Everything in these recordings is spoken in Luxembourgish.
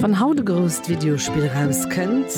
Wann haut e grousst Videospill erauskënnt,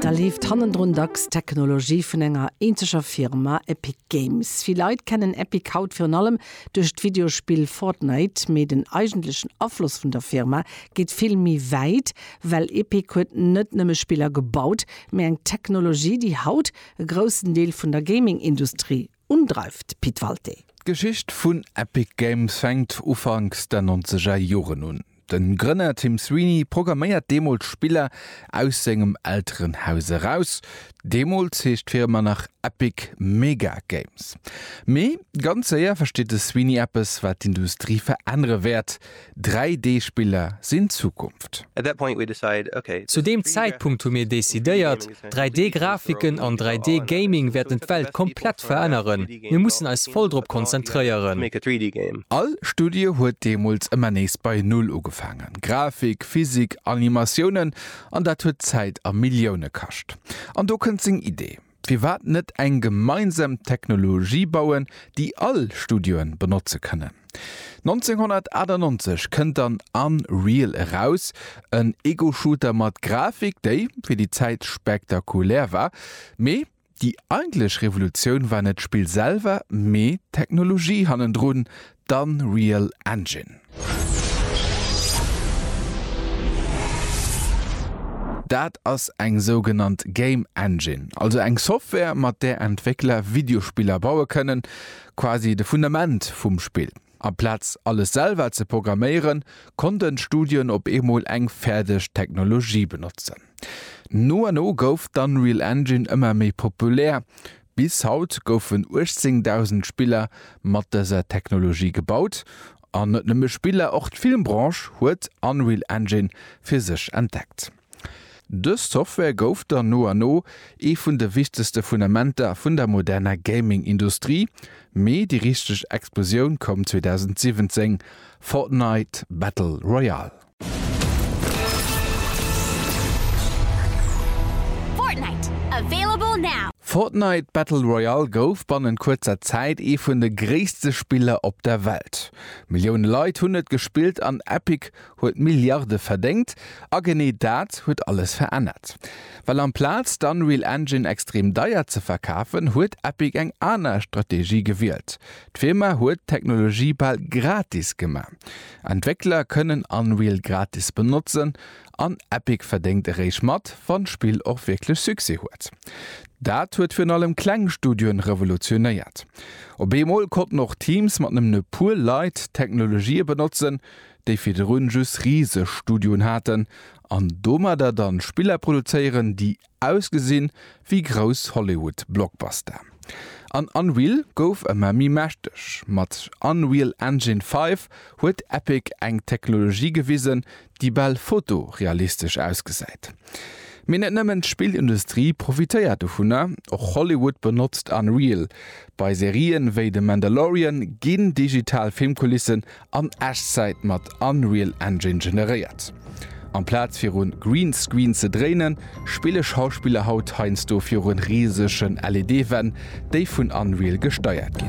da leeft hannendrun dacks d'Technologie vun enger eenzeger Firma, Epic Games. Vill Leit kennen Epic haut virun allem duerch d'Videospill Fortnite, mee den eigentlechen Afloss vun der Firma geet vill méi wäit, well Epic huet net nëmme Spiller gebaut, mee eng Technologie, déi haut e groussen Deel vun der Gaming-Industrie un, dreift Pit Walté. D'Geschicht vun Epic Games fänkt ufanks der nonzeger Joren un. Den Grënner Tim Sweeney programméiert deemools Spiller aus sengem Elterenhaus eraus. Deemools heescht d'Firma nach Epic Mega Games. Mee ganz séier versteet de Sweeney eppes, wat d'Industrie verännere wäert, 3D-Spiller sinn d'Zukunft. Zu deem Zäitpunkt hu mir decidéiert, 3D-Grafiken an 3D-Gaming wäerten d'Welt komplett veränneren. Mir mussen eis voll drop konzentréieren. All Studie huet deemools ëmmer nees bei Null ugefaangen, Grafik, Physik, Animatiounen, an dat huet Zäit a Millioune kascht. An do kënnt seng Idee. Firwat net eng gemeinsam Technologie bauen, déi all Studioe benotze kënnen? 1998 kënnt dann Unreal eraus, en Ego-Shooter mat Grafik, déi fir déi Zäit spektakulär war. Mee déi eigentlech Revolutioun war net d'Spill selwer, mee d'Technologie hannendrun, D'Unreal Engine. Dat ass eng sougenannt Game Engine, also eng Software mat där Entwéckler Videospiller baue kënnen, quasi de Fundament vum Spill. Amplaz alles selwer ze programméieren, konnten d'Studioen op eemol eng fäerdeg Technologie benotzen. No an no gouf d'Unreal Engine ëmmer méi populär, Bis haut goufen 18.000 Spiller mat dëser Technologie gebaut. An net nëmme Spiller, och d'Filmbranche huet Unreal Engine fir sech entdeckt. Dës Software gouf dann no an no ee vun de wichtegste Fundamenter vun der moderner Gaming-Industrie. Mee déi richteg Explosioun koum 2017, Fortnite Battle Royale. Fortnite Battle Royale gouf bannent kuerzer Zäit ee vun de gréisste Spiller op der Welt. Millioune Leit hunn et gespillt an Epic huet Milliarde verdéngt. A genee dat huet alles verännert. Well amplaz d'Unreal Engine extrem deier ze verkafen, huet Epic eng aner Strategie gewielt, D'Firma huet d'Technologie bal gratis gemaach. Entwéckler kënnen Unreal gratis benotzen an Epic verdéngt eréischt mat, wann d'Spill och wierklech Succès huet. Dat huet virun allem kleng Studioen revolutionéiert. Op eemol konnten och Teams mat nëmmen e puer Leit Technologië benotzen, déi virdrun just riseg Studioen haten an domadder dann Spiller produzéieren, déi Ausgesinn wéi grouss Hollywood Blockbuster. An Unreal gouf ëmmer méi mächteg. Mat Unreal Engine 5 huet Epic eng Technologie gewisen, déi bal fotorealistesch ausgesäit. Mee net nëmmen d'Spillindustrie profitéiert dovunner, och Hollywood benotzt Unreal. Bei Serien wéi The Mandalorian ginn digital Filmkulissen an Echtzäit mat Unreal Engine generéiert. Amplaz virun Greenscreen ze dréinen, spille Schauspiller haut heiansdo virun risegen LED-Wänn, déi vun Unreal gesteiert ginn.